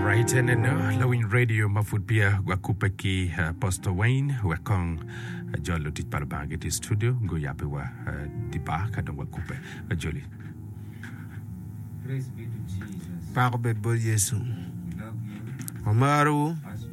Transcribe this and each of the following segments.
Right and no, lawiny radio ma pud pia wakubbe ki uh, Apostle Wayne wek kong uh, jol lutic pa Lubanga gitye i studio guyabbe wa uh, di bar ka dong wakubbe uh, joli. Pako bed bot Yecu. Wamarowu.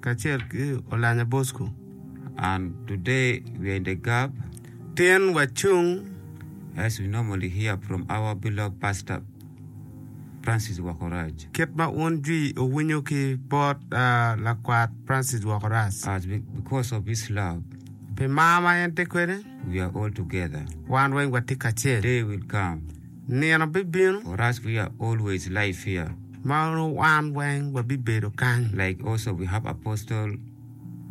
Kacel ki Olanya Bosco and today we are in the gap tin wacung as we normally hear from our beloved pastor Francis Wakorac. Kit ma un jwi owinyo ki bot lakwat Francis Wakorac. As we, because of his love. Pi mar ma en tye kwede. We are all together. Wan weng watye kacel. Day will come. Nino bibino orac we are always live here ma nongo wan weng wabibedo kany like also we have Apostle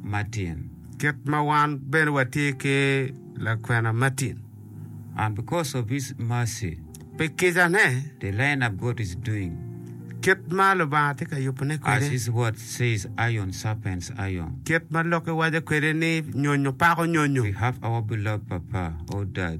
Martin kit ma wan bene watye ki lakwena Martin and because of his mercy pi kicane the land of God is doing kit ma Lubanga tye ka yubone kwede as his word says iron sharpens iron kit ma Lok-ki waco kwede ni nyonyo pako nyonyo we have our beloved papa or dad.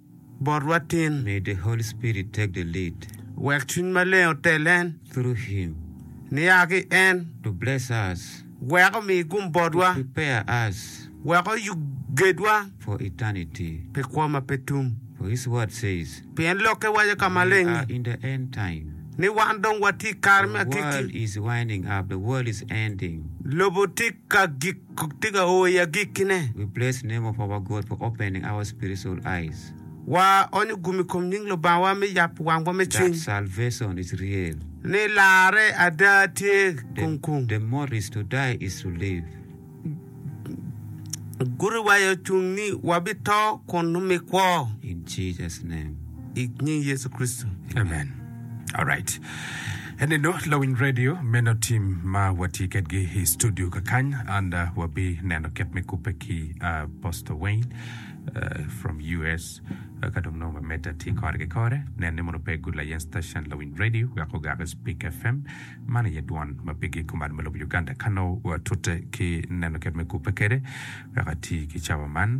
botwa tin. May the Holy Spirit take the lead. Wek Cwiny Maleng otel en. Through Him. Nia ki en. To bless us. Wek omi gum botwa. To prepare us. Wek oyub gedwa. For eternity. Pi kwo ma pe tum. For His Word says. Pien Lokke waco ka maleng ni. We are in the end time. Ni wan dong watye i kare me agikki. The world is winding up. The world is ending. Lobo tye ka gik. Kok tika o i agikkine? Replace the name of our God for opening our spiritual eyes. Wa onyo gum i kom nying Lubangwa me yabo wangwa me cwiny. That salvation is real. Ni larre ada tye kung kung. The mode is to die is to live. Gudo wa i ocung ni wabito kun numi kwo. In Jesus name. I nying Yecu Kricito, amen. Alright. Eninu lawiny radio meno tim ma watye kedgi i studio kakany and uh, wabi neno kit me kubbe ki uh, Pastor Wayne uh, from US uh, ka dong nongo mamedda tye kore ki kore nen ni mono pe gulayen station lawiny radio wek ogak Speak FM man aye dwon ma pigi kuman me lobo Uganda ka nongo watute ki neno kit me kubbe kede wek ati ki cawa man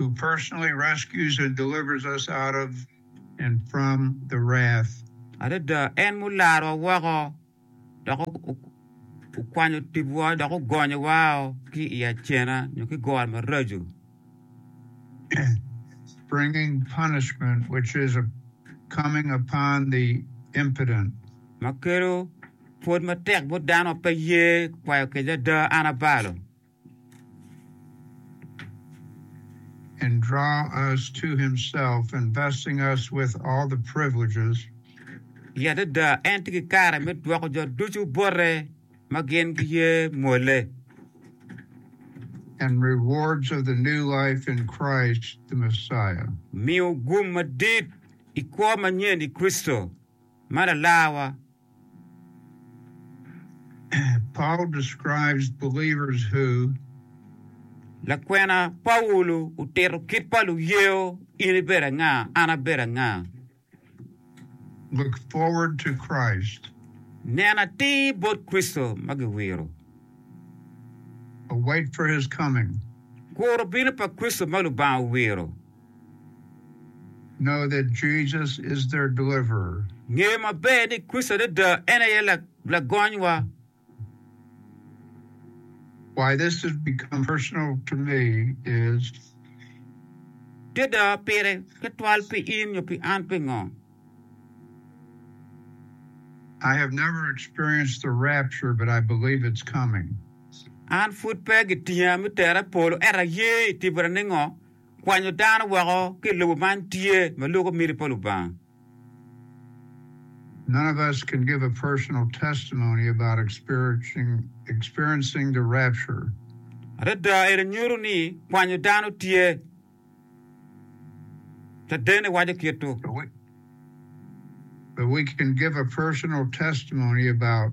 who personally rescues and delivers us out of and from the wrath. Adada, en mularowa woko dok okwanyo tibwa dok ogonyowa o ki i acena nyo ki goro maraco. Bringing punishment which is a coming upon the impotent. Ma kelo pwod matek bot dano ma pe ye kwayo kec ada, an abalo. and draw us to himself and blessing us with all the privileges. I adada en tye ki kare me dwoko jo ducu bote ma gin giye mwole. and rewards of the new life in Christ the Messiah. Miyo gum madit i kwo manyen i Kricito ma Lalarwa. Paul describes believers who Lakwena Paulo otito kit pa luyeyo In ibedo anga? An abedo anga? look forward to Christ, Neno atir bot Kricito ma giwiro. await for his coming. Kuro bino pa Kricito ma Lubanga owiro. know that Jesus is their deliverer. Nge maber ni Kricito adada en aye Lagonywa. Why this has become personal to me is. Adada pire tutwal pi in nyo pi an pingo? I have never experienced the rapture but I believe it's coming. An pud pe gitinga me tera i polo ento aye itibara ningo? Kwanyo dano woko ki i lobo man tye ma loko miti pa Lubanga. None of us can give a personal testimony about experiencing experiencing the rapture. Adada eni nyuto ni kwanyo dano tye. Caden-ni waco kit-tu. But we, but we can give a personal testimony about.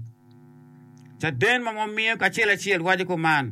Caden ma wamiyo kacel acel waco kuman.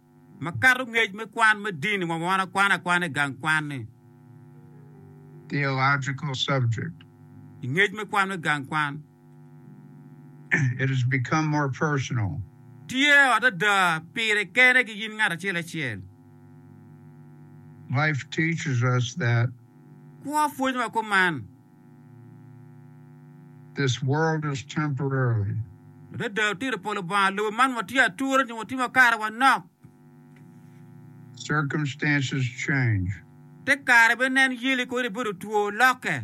Makato ngec me kwan me dini wa ma wan akwano akwana i gang kwan ni. Theological subject. I ngec me kwan me gang kwan. It has become more personal. Tye o adada pire kene ki in ngat acel acel. Life teaches us that. Kwo pwonyowa kuman. This world is temporary. Adada otito polo Banga lobo man watye ature nyo watye makato wanok. Circumstances change. Te kare be nen yeli kodi ibedo two loke.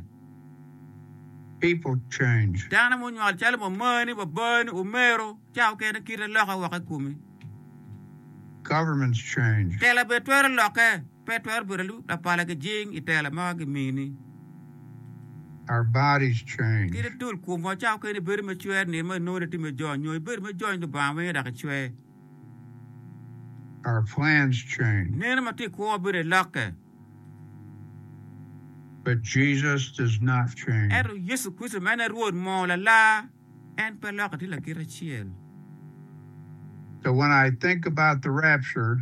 People change. Dano munywal calo mamani, babani, omero, ca okene kite loke woko ikomi. Governments change. Tela be twero loke. Pe twero bedo lub lapala ki jing i tela ma gimini. Our bodies change. Kit adul komwa cako kene bedo me cwer nino ma inongo ni itye me jony nyo ibedo me jony Lubanga wenge dok icwer. Our plans change. Neno ma tye i kwowa bedo i lokke. But Jesus does not change. Ento Yecu Kricito ma en aye Rwot moo lalar, en pe lokke tye lakite acel. So when I think about the rapture.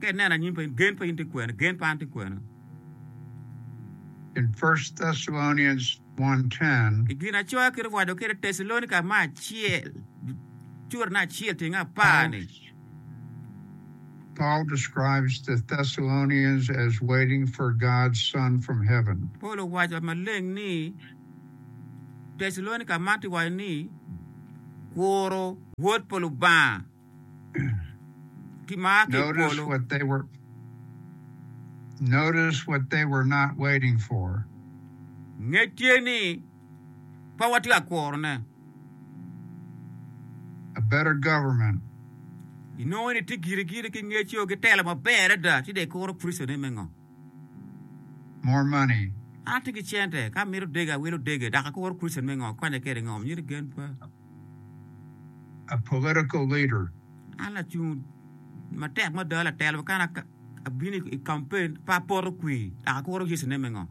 Ka ineno anyim pa in, gen pa in tye kwene? Gen pa an tye kwene? In First Thessalonians one ten. I Ginacoya kit owaco kwede, Tecalonika me acel, curane acel tyenge apar ni. Paul describes the Thessalonians as waiting for God's Son from heaven. Paul owaco maleng ni Tecalonika man tye waco ni kuro Wod pa Lubanga. kimar ki i polo. Notice what they were not waiting for. Nge tye ni pe watye ka kuro ne. A better government. Inongo ni tye giri giri ki ngeco ki telo maber adada ci dong ikuro Kristo ne me ngo? More money. An atye ki cente ka amito dege awilo dege dok akuro Kristo me ngo? Akonye kede ngo? Myero gen pa. a political leader. An lacung matek me doyo latelo ma kane abino i campaign pe apoto kwir dok akuro Yecu ne me ngo?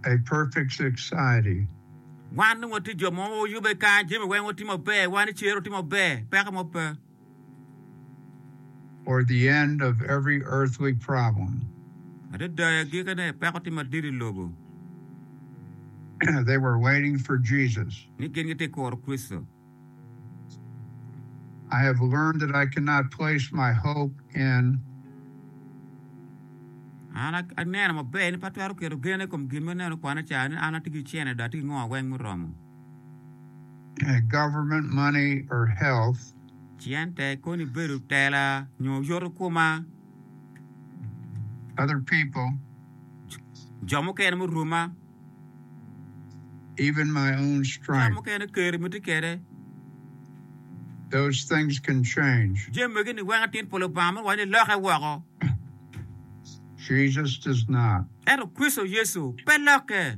A perfect society. Wan dong watye jo ma oyubbe kany, jami weng watye maber, wan i cer watye maber, peko mo pe. or the end of every earthly problem. Adada i agikene, peko tye madit i lobo. They were waiting for Jesus. Ni gin gitye ka kuro Kricito. I have learned that I cannot place my hope in. An aneno maber ni pe atwero keto gena i kom gin ma aneno kwane ca ni an atye ki cene dok atye ki ngo weng muromo. government money or health. Cente koni bedo tela nyo yoto koma. Other people. Jo mukene muruma. Even my own Jo strength. mukene keri ma tye kede. Those things can change. Jami magi ni weko atit pa Lubanga ma wacci loke woko. Jesus does not. Ento Kricito Yecu pe lokke.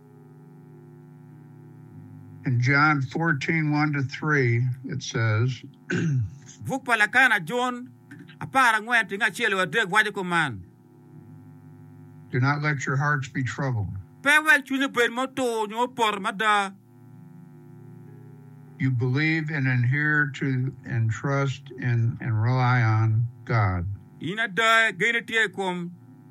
In John 14, 1 to 3, it says, Buk pa Lakana Jun apar angwen tingo acel wa adek waco kuman, Do not let your hearts be troubled. Pe wek cwinyu bed ma otur nyo opoto mada. You believe and adhere to and trust in and rely on God. In ada, gen itye i kom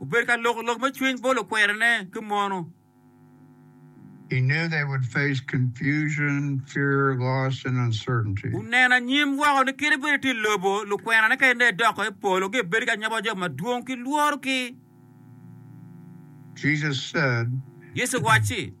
Obedo ka loko lok me cwiny bot lukwerene ki mono. Oneno anyim woko ni kit bedo tye i lobo, lukwenane ka en dong edoko i polo gi ebedo ki anyoba jo madwong ki lworo ki. Yecu owacci.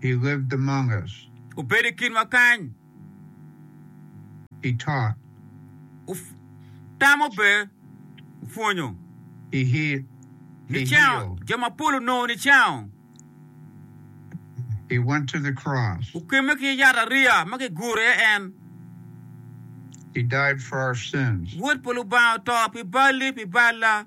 He lived among us. Obedo i kinwa kany. He taught. Otamo be opwonyo. He healed. Nicango jo mapol onongo nicango. He went to the cross. Okemme ki yat ariya ma kiguro iye en. He died for our sins. Wod pa Lubanga oto pi balli, pi balla.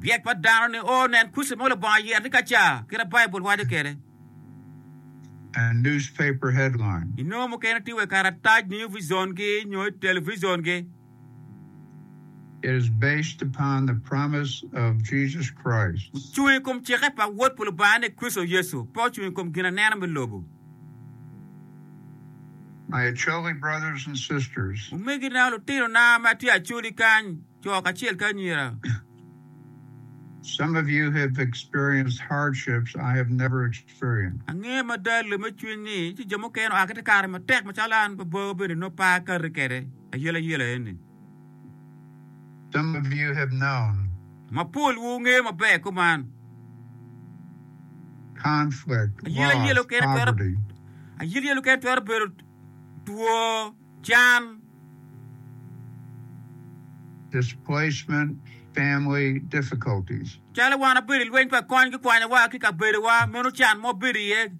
Ryek pa dano ni o nen kuc mo Lubanga yero ni ka ca, kit ma Baibul waco kwede. I nongo mukene tye wa i karatac, New Vision gi, nyo i television gi. Ocung i kom cikke pa Wod pa Lubanga ni Kricito Yecu, pe ocung i kom gin aneno me lobo. Omegina, lutinona ma tye Acholi kany, co kacel ki anyira. Angeyo mada lem me cwiny ni ci jo mukene oa ki te kare matek macalo an, babawa bene nongo pe a kati kede ayelayela eni. Some of you have known. Mapol wu ngeyo maber kor man. Conflict, loss, poverty. Ayil yel mukene twero bedo two, can. Displacement, family difficulties. Calo wan wabedo i lweny pa kony ki kwanyowa ki kabedowa, meno can ma wabedo iye.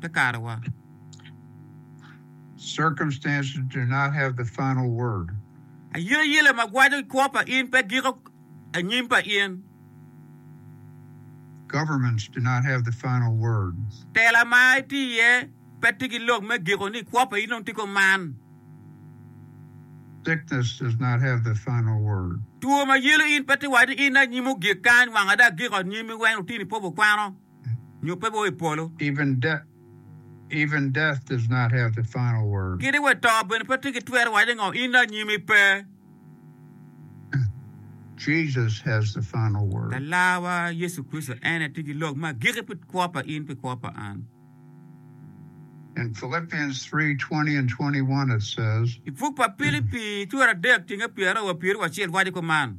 te kare wa. Circumstances do not have the final word. Ayie yele ma gwaco i kwo pa in pe giko anyim pa in. Governments do not have the final word. Tela ma iti iye pe ti ki lok me giko ni kwo pa in dong ti ko man. Sickness does not have the final word. Two ma yelo in pe ti waco ni in anyim ogik kany wanga da giko anyim weny otini pobo kwano. nyo pe bwoo i polo. Kadi wa to bene pe tye ki twero waco ngo in anyim i pe. Alar wa Yecu Kricito en aye tye ki lok me agiki pi kwo pa in pi kwo pa an. I buk pa Pilipi cura adek ceng apyer aryo wa pyeraryo wa acel waco kuman.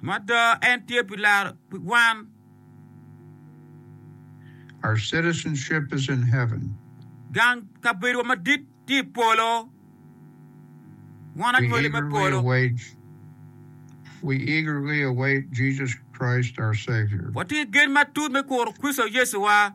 Mada en tye pi laro pi wan. Gang kabedowa madit tye i polo. Wan anywali me polo. Watye ki gen matut me kuro Kricito Yecuwa.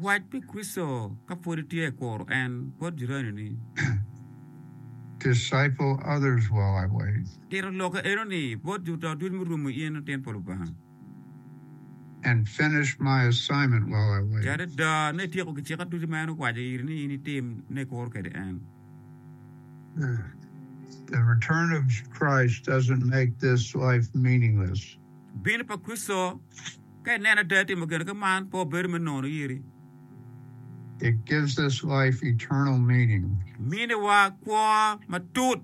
Wac pi Kricito ka pwod itye kuro en bot jirani-ni. Disciple others while I wait. Tito lokke enoni bot jo to ducu murumo in latin pa Lubanga. And finish my assignment while I wait. Ti adada ni ityeko gicika ducu ma en owaco iri ni in itim ni ikuro kwede en. The return of Christ doesn't make this life meaningless. Bino pa Kricito, Ka ineno ada timo gin ka man, pe wabedo me nono iri. It gives this life eternal meaning. Miniwa kwo matut.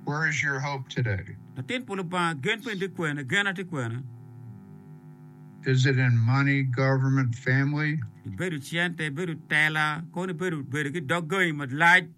Where is your hope today? Latin pa Lubanga, gen peni tye kwene? Genna tye kwene? Is it in money, government, family? Ibedo cente, ibedo tela, kono ibedo bedo ki dog gangi malac?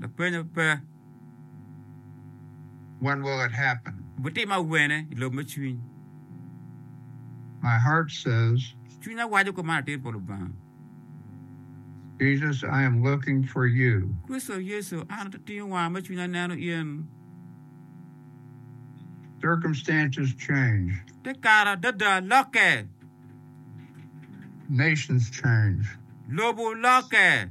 Lapenyo pe. When will it happen? Bitimme awene i lobo me cwiny? My heart says. Cwinya waco kop man atir pa Lubanga. Jesus, I am looking for you. Kricito Yecu, an atingo wanga me cwinya aneno in. Circumstances change. Te kare adada lokke. Nations change. Lobo lokke.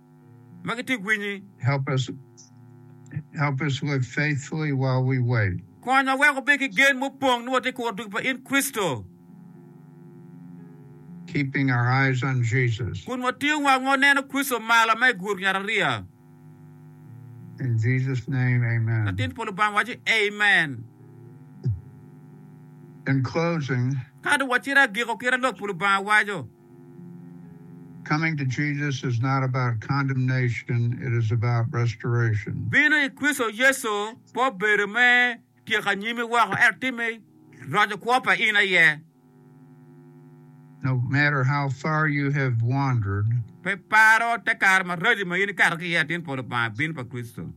ma gitye ka kwinyi. Konya wek wabed ki gen ma opong ni watye ka kuro dul pa in Kricito, kun watingo wangwa waneno Kricito malo ma i guru nyarariya. Latin pa Lubanga waco, Amen. Ka dong wacito agiko kit ma Lok pa Lubanga waco. Coming to Jesus is not about condemnation, it is about restoration. Bino i Kricito Yecu pe obedo me tyeko anyimi woko, ento tye me roco kwo pa in aye. No matter how far you have wandered. Pe iparo te kare maraco ma in ikato ki iye atin pa Lubanga, bin pa Kricito.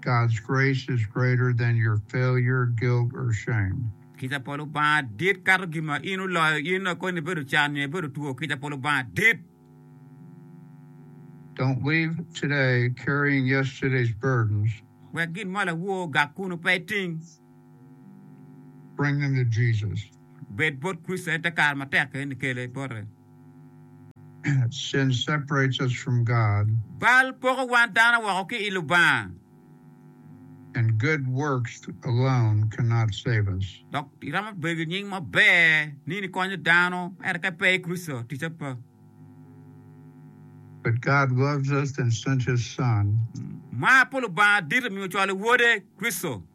God's grace is greater than your failure, guilt or shame. Kica pa Lubanga dit kato gin ma in oloyo in nongo koni ibedo can nyo ibedo two, kica pa Lubanga dit. Don't leave today carrying yesterday's burdens. Wek gin ma lawo ogak kunu pe iting. Bring them to Jesus. Bed bot Kricito en te kare matek keni kele bote. Sin separates us from God. Bal poko wan dano woko ki i Lubanga. And good works alone cannot save us. Dok iromo bedo ki nying maber ni nikonyo dano, ento ka ipe i Kricito, ticce pe. But God loves us and sent His Son. Mar pa Lubanga dit omiyo ocwalo Wode, Kricito.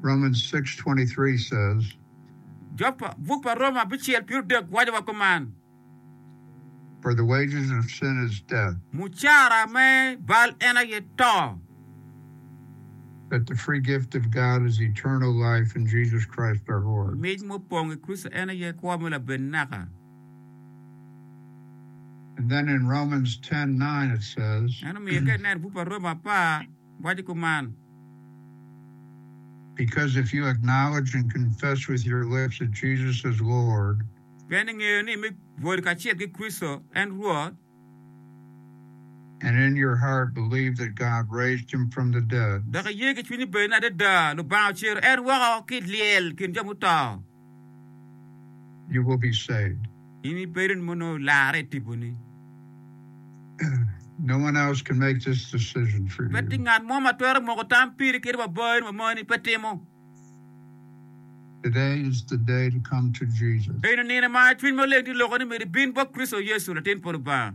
Romans 6:23 says. Jo pa buk pa Roma abicel pir odek waco wa kuman. For the wages of sin is death. Mucara me bal en aye to. But the free gift of God is eternal life in Jesus Christ our Lord. Mic mu pong i Kricito en aye kwo me laben naka. And then in Romans 10:9 it says. Eno miyo ka ineno buk pa Roma apar. waco kuman. Because if you acknowledge and confess with your lips that Jesus is Lord. Pien ingeyo ni me bwodi kacel ki Kricito en Rwot. And in your heart believe that God raised him from the dead. Dok iye ki cwinyi bene ni adada Lubanga ocero en woko ki i lyel kin jo muto. you will be saved. In ibedo ni mono olarre i tipo ni. No one else can make this decision for you. Pe tye ngat mo ma twero moko tam piri kit ma baa ni ma moni pe timo. Today is the day to come to Jesus. Eno nino ma Cwiny Maleng tye loko ni myero ibin bot Kricito Yecu, Latin pa Lubanga.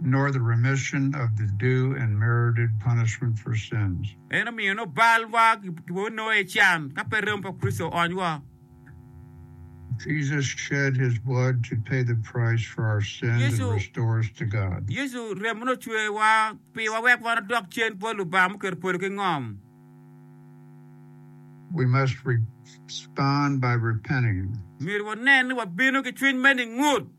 nor the remission of the due and merited punishment for sins. En omiyo nongo bal wa kibwoko nongo aye can ka pe remo pa Kricito oony wa. Jesus shed his blood to pay the price for our sins and Yecu- restore us to God. Yecu remone ocwer wa piwa wek wan odok cen bot Lubanga muketo polo ki ngom. We must respond by repenting. Myero wanen ni wabino ki cwiny me ningut.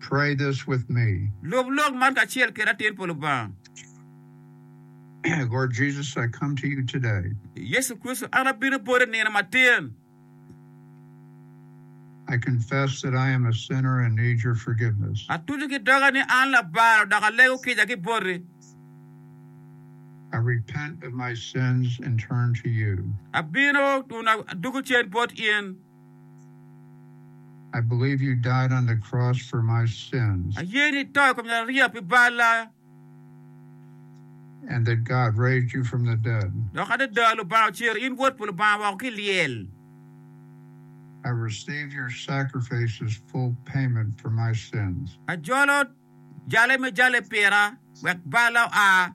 Pray this with me. Lub lok man kacel keda atir pa Lubanga. Lord Jesus, I come to you today. Yecu Kricito, an abino boti nino matin. I confess that I am a sinner and need your forgiveness. Atuco ki doga ni an labalo dok alego kica ki boti. I repent of my sins and turn to you. Abino kun adugo cen bot in. Aye ni ito i kom Nyarariya pi balla, dok adada Lubanga ocero in Wod pa Lubanga woko ki i lyel. Ajolo jale me jale pira wek balla oa.